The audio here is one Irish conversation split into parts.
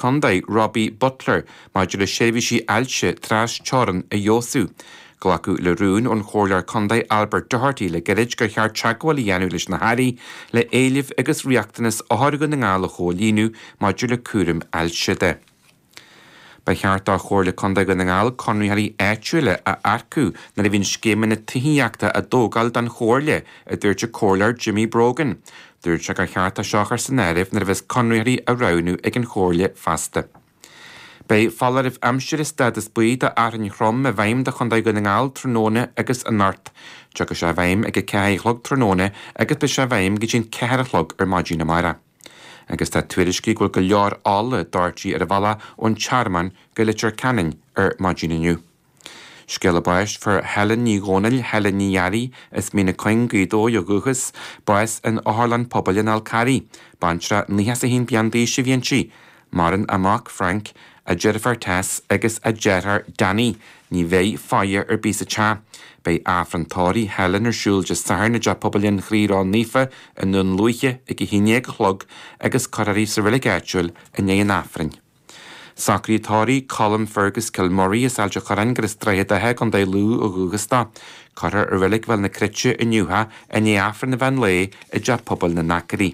Contae, Robbie Butler, maidir le seirbhísí ailse trasteorann a fheabhsú. Glacadh le rún ón Chomhairleoir Contae Albert Doherty le gairid gur cheart teagmháil a dhéanamh leis na hAirí le éilimh agus riachtanas othair Dhún na nGall a chomhlíonadh maidir le cúram ailse de. Ba cheart do Chomhairle Contae Dhún na nGall conraitheoirí áitiúila a earcú nuair a bhíonn scéimeanna tithíochta á dtógáil don Chomhairle, a dúirt an Comhairleoir Jimmy Brogan. Dúirt sé gur cheart é seo a chur san áireamh nuair a bheas conraitheoirí á roghnú ag an Chomhairle feasta. Beidh foláireamh aimsire stádas buí do fhearthainn throm i bhfeidhm do Chontae Dhún na nGall tráthnóna agus anocht. Tiocfaidh sé i bhfeidhm ag a ceathair a chlog tráthnóna agus beidh sé i bhfeidhm go dtí an ceathair a chlog ar maidin amárach. Agus tá tuairiscí ann go bhfuil go leor ola doirte ar an bhealach ón Tearmann go Leitir Ceanainn ar maidin inniu. Scéala báis. Fuair Helen Ní Dhomhnaill, Helen Ní Fhearraí, as Mín na Cuinge, Gaoth Dobhair ó dhúchas, bás in Otharlann Pobail an Fháil Charraigh. Baintreach 91 bliain d'aois a bhí inti. Maireann a mac, Frank, a deirfiúr Tess agus a deartháir Danny. Ní bheidh faire ar bith sa teach. Beidh Aifreann tórraimh Helen ar siúl Dé Sathairn i dTeach Pobail an Chroí Ró Naofa i nDún Lúiche ag a 11 a chlog agus cuirfear í sa reilig áitiúil i ndiaidh an Aifrinn. Socruithe tórraimh Colin Fergus Kilmurray as Ailt an Chorráin gurb as Droichead Átha i gContae Lú ó dhúchas dó. Cuirfear i Reilig Bhéal na Cruite inniu é, i ndiaidh Aifreann an mheán lae i dTeach Pobail na nAcairí.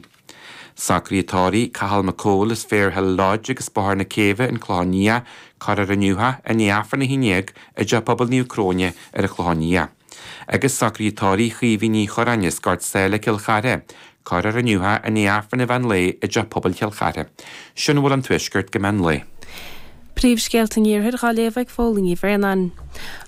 Socruithe tórraimh Cathal McCole as Fairhill Lodge agus Bóthar na Céibhe an Clochán Liath, cuirfear inniu é, i ndiaidh Aifreann a haon dhéag i dTeach Pobail Naomh Cróine ar an Chlochán Liath. Agus socruithe tórraimh Chaoimhín Uí Chorráin as Gort Sáile i gCill Chartha, cuirfear inniu é i ndiaidh Aifreann an mheán lae i dTeach Pobail Chill Chartha, sin a bhfuil ón Tuaisceart go meán lae. Príomhscéalta an Iarthair dhá léamh ag Fódhla Ní Bhraonáin.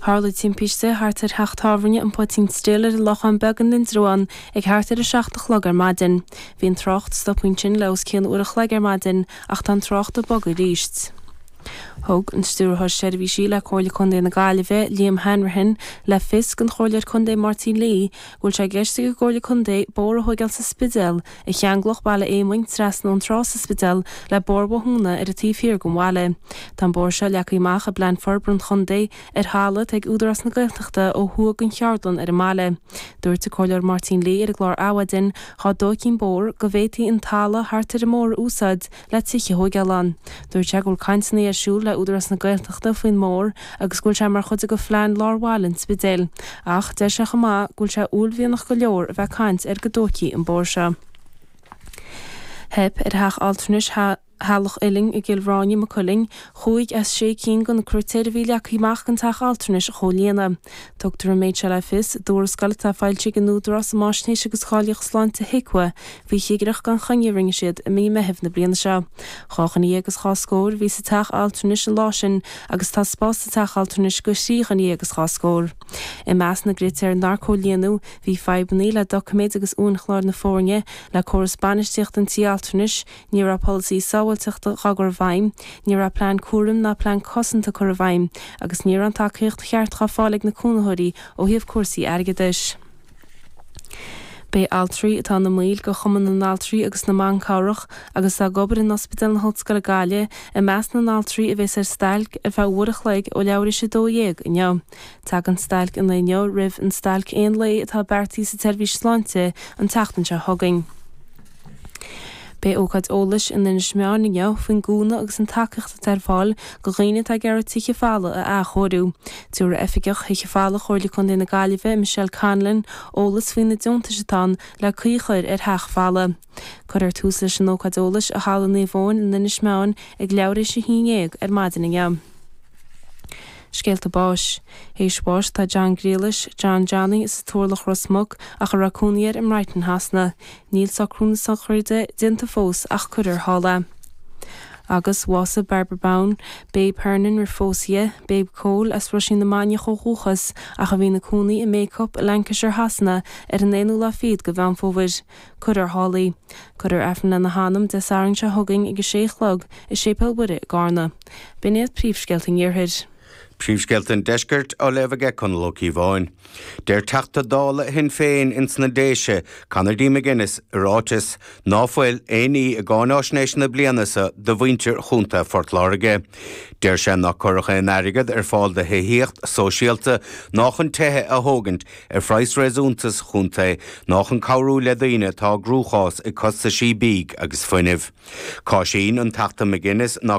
Tharla timpiste thart ar theach tábhairne an Poitín Stil ar an Lochán Beag in Indreabhán ag thart ar 7 a chlog ar maidin. Bhí an trácht stoptha ansin le os cionn uair a chloig ar maidin ach tá an trácht ag bogadh aríst. Thug an Stiúrthóir Seirbhísí le Comhairle Contae na Gaillimhe, Liam Hanrahan, le fios don Chomhairleoir Contae Máirtín Lee go bhfuil sé i gceist ag an gComhairle Contae bóthar a thógáil sa Spidéal a cheanglódh Baile Éamoinn trasna ón trá sa Spidéal le Bóthar Bhothúna ar an taobh thiar den bhaile. Tá an bóthar seo leagtha amach i bPlean Forbartha an Chontae ar thalamh atá ag Údarás na Gaeltachta ó thuaidh den cheardlann ar an mbaile. Dúirt an Comhairleoir Máirtín Lee ar an gclár Adhmhaidin dá dtóigfí an bóthar go bhféadfaí an talamh thart ar an mbóthar a úsáid le tithe a thógáil ann. Dúirt sé go bhfuil cainteanna ar siúl le Údarás na Gaeltachta faoin mbóthar agus go bhfuil sé mar chuid de phlean lár bhaile an Spidéil. Ach deir sé chomh maith go bhfuil sé uaillmhianach go leor a bheith ag caint ar go dtóigfí an bóthar seo. Theip ar theach altranais Theaghlach Uilinn i gCill Ráine, Maigh Cuilinn, chúig as sé cinn de na critéir a bhí leagtha amach don teach altranais a chomhlíonadh. Tugtar an méid seo le fios i dtuarascáil atá foilsithe ag an Údarás um Fhaisnéis agus Cáilíocht Sláinte, HIQA, Bhí cigireacht gan choinne a rinne siad i mí Meithimh na bliana seo. Dhá dhuine dhéag is dhá scór a bhí sa teach altranais an lá sin agus tá spás sa teach altranais do thrí dhuine dhéag is dhá scór. I measc na gcritéar nár comhlíonadh, bhí fadhbanna le doiciméid agus uainchláir na foirne, le córas bainistíochta an tí altranais, ní raibh polasaithe sábháilteachta á gcur i bhfeidhm, ní raibh plean cúraim ná plean cosanta curtha i bhfeidhm, agus ní raibh an tacaíocht cheart á fáil ag na cónaitheoirí ó thaobh cúrsaí airgeadais. Beidh altraí atá ina mbaill de Chumann na nAltraí agus na mBan Cabhrach agus atá ag obair in Ospidéal na hOllscoile Gaillimhe i measc na n-altraí a bheas ar stailc ar feadh uair a chloig ó leathuair théis 12 inniu. Tagann stailc an lae inniu roimh an stailc aon lae atá beartaithe sa tseirbhís sláinte an tseachtain seo chugainn. Beidh ócáid eolais in Inis Meáin inniu faoin gcúnamh agus an tacaíocht atá ar fáil do dhaoine atá ag iarraidh tithe folmha a athchóiriú. Tabharfaidh Oifigeach Thithe Folmha Chomhairle Contae na Gaillimhe, Michelle Conlon, eolas faoi na deontais atá ann le caoi a chur ar theach folamh. Cuirfear tús leis an ócáid eolais i Halla Naomh Eoin in Inis Meáin ag leathuair théis a haon dhéag ar maidin inniu. Scéalta báis. Théis bháis atá John Griallais, John Johnny, sa Turlach, Ros Muc, ach a raibh cónaí air i mBrighton Shasana. Níl socrú na sochraide déanta fós ach cuirfear thall é. Agus bhásaigh Barbara Bowen, Babe Hernon, roimh phósadh di, Babe Chóil, as Roisín na Mainiach, ó dhúchas ach a bhí ina cónaí i mBacup i Lancashire Shasana ar an aonú lá fichead de Mheán Fómhair, cuirfear thall í. Cuirfear Aifreann lena hanam Dé Sathairn seo chugainn ag a sé a chlog i Séipéal Mhuire i gCarna. B'in iad príomhscéalta an iarthair. Príomhscéalta an Deiscirt á léamh aige Conall Ó Cíobháin. Deir Teachta Dála Shinn Féin ins na Déise, Conor D. McGuinness, i ráiteas, ná fuil aon ní i gcáináisnéis na bliana so do mhuintir Chontae Phort Láirge. Deir sé nár cuireadh aon airgead ar fáil do thithíocht sóisialta, ná chun tithe a thógaint ar phraghas réasúnta sa chontae, ná chun cabhrú le daoine atá i gcruachás ag costaisí bídh agus fuinnimh. Cáiseann an Teachta McGuinness ná